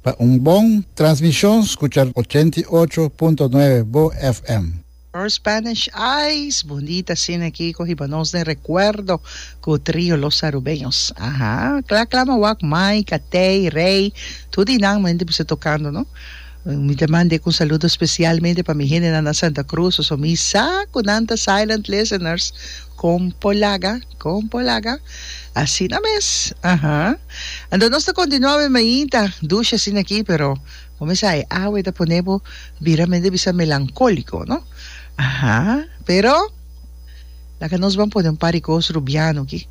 Pa un bon transmishon skucha ochenta i ocho punto nuebe bo FM. More Spanish Eyes bundita sina Kiko hiba nos den recuerdo cu Trio Los Arubeños aha cla cla ma wak Maica, Tey, Rey tur di nan mente bisa tocando no mi ta man dek un saludo especialmente pa mi hende nan na Santa Cruz so mi sa cu nan ta Silent Listeners con Polaga. Kon por laga? Asina mes. Aha. Anto nos ta kontinuá be mainta dushi asina aki, pero bo mesa e awa ei ta pone bo bira mende bisa melankóliko, no? Aha. Pero laga nos ban pone un par di kos rubiano aki.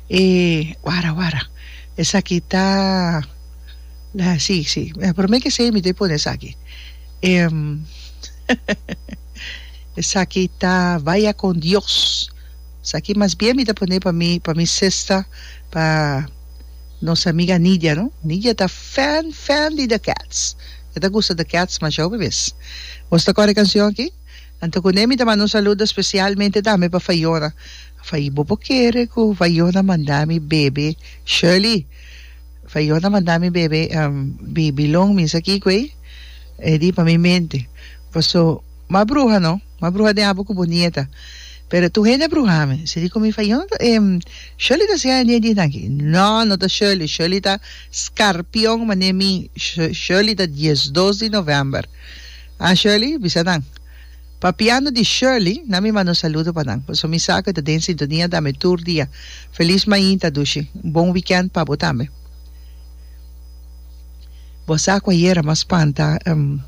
E, wara, wara. Esaki ta, la, sí, sí. Promé ke esei mi dei pone esaki. Em, esaki ta Vaya con Dios. Esaki mas bien mi ta pone pa mi pa mi sista pa nos amiga Nidia no Nidia ta fan fan di the cats e ta gusta the cats mashao mi mes nos ta kore cancion aki anto cune mi ta manda un saludo specialmente tambe pa Fayona Fai bo por kere cu Fayona manda mi bebe Shirley Fayona manda mi bebe bibilon mi esaki cu e e di pa mi mente paso ma bruha no. Ma bruha den abo cu bo nieta. Pero tu hende a bruha mi. Si di cu mi, Yo no ta, eh, Shirley ta siña hende e dies naki. No, no ta Shirley. Shirley ta scarpion mane mi. Shirley ta diesdos di november. Ah, Shirley, bisa nan. Papiando di Shirley, nan mi manda un saludo pa nan. Pasobra mi sa cu e ta den sintonia dame tur dia. Feliz mainta, Dushi. Un bon weekend pa bo tambe. Bo a sa cu ayera mas spanta, em.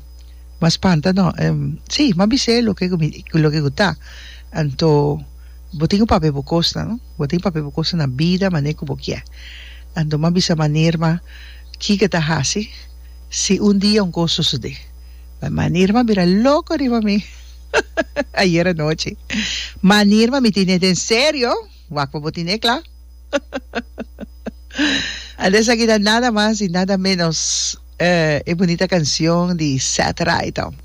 M'a spanta no. Sí, m'a bis'é loke ku mi loke ku ta. Anto bo tin ku papia bo kosnan, no? Bo tin ku papia bo kosnan na bida mané ku bo ke. Anto m'a bisa m'anirma kiko ta hasi si un dia un kos sosodé. Bai m'anirma bira loko riba mi ayera anochi. M'anirma mi tin'é den serio. Wak pa bo tin e kla. And esaki ta nada mas y nada menos eh, e bunita cancion di Seth Rytom.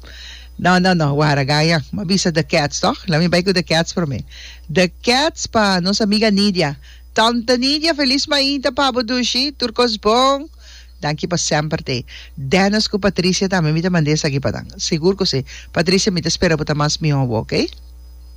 No, no, no, wara gaya, m'a bisa The Cats toch? Laat mi bay cu The Cats prome. The Cats pa nos amiga Nidia. Tante Nidia, feliz mainta pa bo dushi, tur cos bon. Danki pa semper t'e. Dennis cu Patricia tambe mi ta manda esaki pa nan. Segur cu si. Patricia, mi ta spera bo ta mas miho bo, ok?